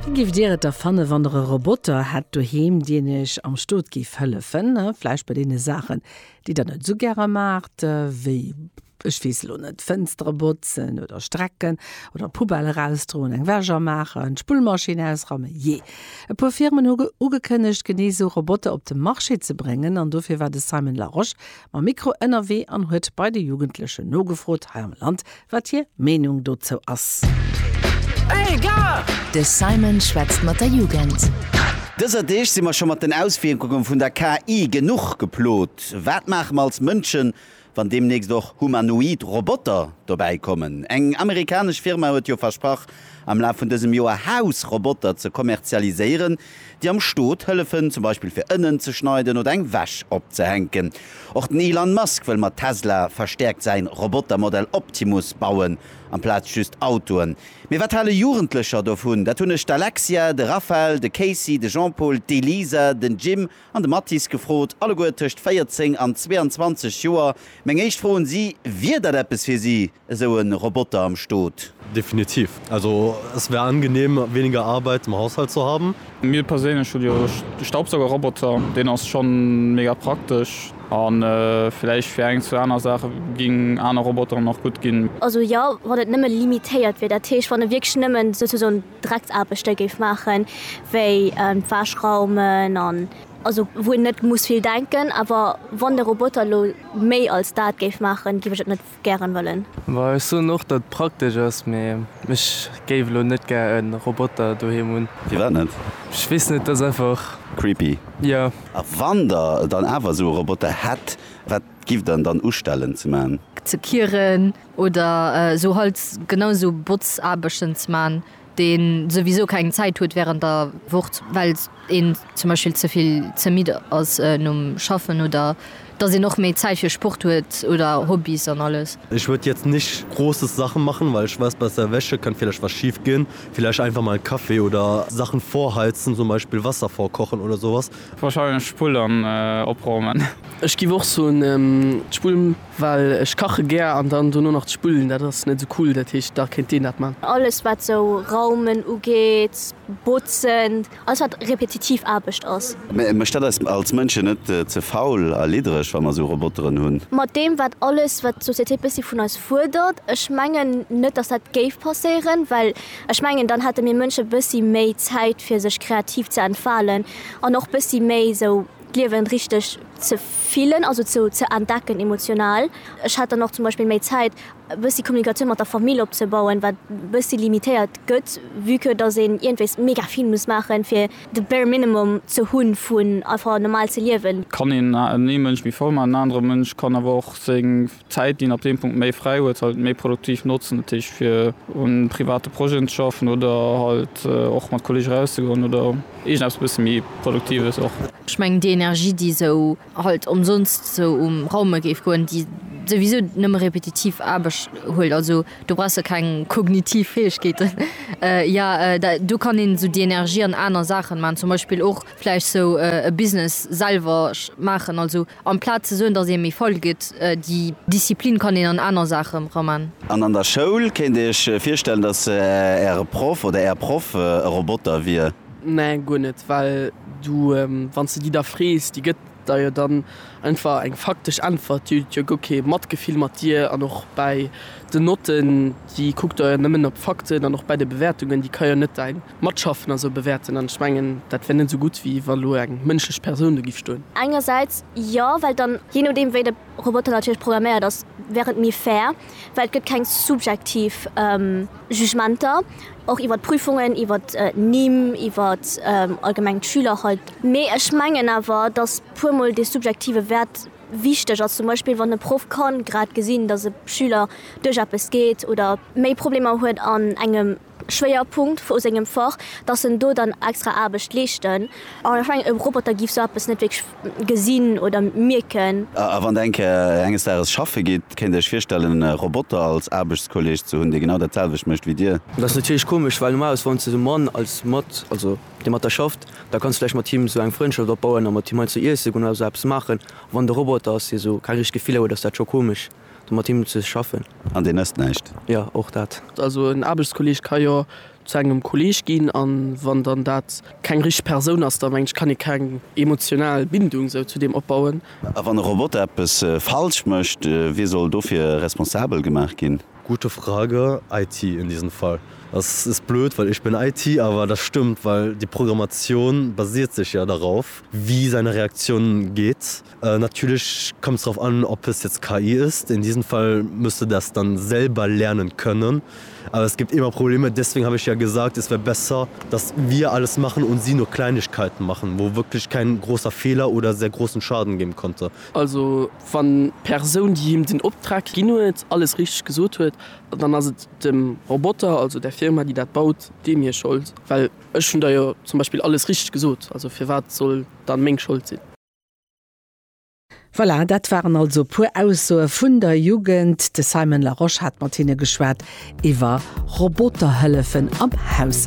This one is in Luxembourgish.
Wéi giff Dir et da fannen, wann Der e Roboter hätt doheem, dien Iech am Stot giff hëllefen, vläicht bei deene Saachen, déi Der net esou gäre maacht, wéi, ech weess elo net, d'Fënstere botzen oder strecken oder d'Poubelle erausdroen, eng Wäsch amaachen, d'Spullmaschinn ausrammen? Jee, e puer Firmen hu ugekënnegt, genee esou Roboter op de Marché ze bréngen an dofir war de Simon Larosche mam Mikro ënnerwee an huet bei de Jugendlechen nogefrot hei am Land, wat hir Meenung dozou ass. De Simon schwätzt mat der Jugend. Dëser Deeg si mer scho mat den Auswierkunge vun der KI genuch geplot. Wat maache mer als Mënschen, wann deemnächst och humanoid Roboter dobäi kommen? Eng amerikanesch Firma huet jo versprach, am Laf vun dësem Joer Haus-Roboter ze kommerzialiséieren, déi am Stot hëllefen, zum Beispill fir Ënnen ze schneiden oder eng Wäsch opzehänken. Och den Elon Musk wëll mat Tesla verstäerkt säi Robotermodell Optimus bauen, amplaz just Autoen. Mee wat hale Jugendlecher dovun? Dat hunn ech d'Alexia, de Raphael, de Casey, de Jean-Paul, d'Elisa, den Jim an de Mathis gefrot, alleguer tëscht 14 an 22 Joer. Meng éischt Fro un si, Wier dat eppes fir si? Esou e Roboter am Stot? Definitiv. Also es wär angenehm weniger Arbeit im Haushalt zu haben. Mir perséinlech hunn jo de Staubsaugerroboter, deen ass schonn mega praktesch an villäicht fir eng zwou aner Saache ginn aner Roboteren och gutt ginn. Also jo, wann et nëmme limitéiert wier, dat heescht wann e wierklech nëmmen souzesoen Drecksaarbechte géif maachen, wéi d'Wäsch raumen an also wou een net muss vill denken. Awer wann de Roboter elo méi als dat géif maachen, géif ech et net. gären wëllen. Bon ech soen och dat praktesch ass mee ech géif elo net gär en Roboter doheem hunn. Firwat net? Ech weess net, ass einfach. Creepy? Jo. A wann der dann awer esou e Roboter hätt, wat gifft der en dann ustellen ze man? Ze kieren oder esou halt genau esou Botzaarbechten ze man dee souwisou keng Zäit huet wärend der Woch, well een zum Beispill ze vill ze midd ass nom Schaffen oder dass een och méi Zäit fir Sport huet oder Hobbys an alles. Ich würde jetzt nicht großes Sachen machen, weil ich weiß, bei der Wäsche kann vielleicht was schief gehen. Vielleicht einfach mal einen Kaffee oder Sachen vorheizen, zum Beispiel Wasser vorkochen oder sowas. Wahrscheinlech d'Spull an opraumen. Ech giff och soen d'Spull. Well ech kache gär an dann dono nach d'Spullen, dat ass net esou cool. Dat heescht, da kéint deen dat man. Alles wat sou raumen ugeet, botzen, alles wat repetitiv Aarbecht ass. Mä mécht dat eis als Mënschen net ze faul a liddereg, wa mer sou Roboteren hunn? Mat deem wat alles wat d'Société bëssi vun eis fuerdert, ech mengen net dass dat géif passéieren, well ech mengen dann hätte mir Mënsche bëssi méi Zäit fir sech kreativ ze entfalen an och bëssi méi sou. d'Liewen richteg ze fillen, also ze ze entdecken emotional. Ech hat dann och zum Beispill méi Zäit e bëssi Kommunikatioun mat der Famill opzebauen, wat e bëssi limitéiert gëtt, vue que datt een iergendwéis mega vill muss maachen, fir de bare minimum ze hunn, vun einfach normal ze liewen. Kann een ee Mënsch méi voll maachen, en anere Mënsch kann awer och seng. D'Zäit, déi een ab deem Punkt méi fräi huet, halt méi produktiv notzen, dat heescht fir un private Projeten ze schaffen oder halt och mat Kolleege rauszegoen oder iergendeppes e bësse méi Produktives och. Ech mengen, déi Energie, déi esou halt ëmsonst esou um Raume géif goen, déi souwisou nëmme repetitiv Aarbecht huelt, also do brauchs de keng kognitiv Fäegkeeten, jo, do kann een esou déi Energie an aner Saachen maachen, zum Beispill och vläicht esou e Business selwer maachen, also Amplaz ze soen, dass ee méi faul gëtt, déi Disziplin kann een an aner Saache raman. An an der Schoul? Kéint Dir Iech virstellen, dass Äre Proff oder Är Proff e Roboter wier? Nee, guer net, well du, wann s de déi da frees, déi gëtt der jo dann einfach eng faktesch Äntwert. Déi huet jo guer kee Matgefill mat dir. An och bäi den Notten, déi kuckt der jo nëmmen op d'Fakten. An och bäi de Bewäertungen, déi ka jo net däin Matschaffen a sou bewäerten, an ech mengen, dat wär net esou gutt, wéi wa lo eng mënschlech Persoun do giff stoen. Engersäits jo, well dann, jee nodeem wéi de Roboter natierlech programméiert ass, wär et méi fair, well et gëtt keng subjektiv Jugementer, och iwwer d'Prüfungen, iwwer d'Nimm, iwwer allgemeng d'Schüler halt. Mee ech mengen awer, datt puer mol dee subjektive Wäert wichteg ass, zum Beispill wann e Proff ka grad gesinn, datt e Schüler duerch eppes geet oder méi Problemer huet an engem. Schwéierpunkt vu sengem Fach, dass en do dann extra Aarbecht leeschten. An ech mengen, e Roboter géif sou eppes net wierklech gesinn oder mierken. A wann enk enges Dages schaffe geet, kéint Dir Iech virstellen, e Roboter als Aarbechtskolleeg ze hunn, dee genau dat selwecht mécht wéi Dir? Dat ass natierlech komesch, well normalerweis, wann s de de Mann als mat, also dee mat der schafft, da kanns de vläicht mat him esou eng Frëndschaft opbauen a mat him heiansdo iesse goen oder esou eppes maachen. A wann et e Roboter ass, dee esou keng richteg Gefiller huet, ass dat scho komesch. do mat him ze schaffen. An deen ësst näischt? Jo, och dat. Also en Aarbechtskolleeg ka jo zu engem Kolleeg ginn, a wann dann dat keng richteg Persoun ass, da mengen ech, kann ee keng emotional Bindung esou zu deem opbauen. A wann e Roboter eppes falsch mécht, wie soll dofir responsabel gemaach ginn? Gute Frage. IT in diesem Fall. Das ist blöd, weil ich bin IT, aber das stimmt, weil die Programmation basiert sich ja darauf, wie seine Reaktion geht. Natierlech kommt es drauf an, ob es jetzt KI ist. In diesem Fall musst du das dann selber lernen können. Aber es gibt immer Probleme. Deswegen habe ich ja gesagt, es wäre besser, dass wir alles machen und sie nur Kleinigkeiten machen, wo wirklich kein großer Fehler oder sehr großen Schaden geben konnte. Also wann d'Persoun, déi him den Optrag ginn huet, alles richteg gesot huet, dann ass et dem Roboter, also der Firma, déi dat baut, deem hir Schold. Well ech hunn der jo zum Beispill alles richteg gesot, also firwat soll dann meng Schold sinn? Voilà, dat waren also e puer Aussoe vun der Jugend. De Simon Larosche hat mat hinne geschwat iwwer Roboterhëllefen am Haushalt.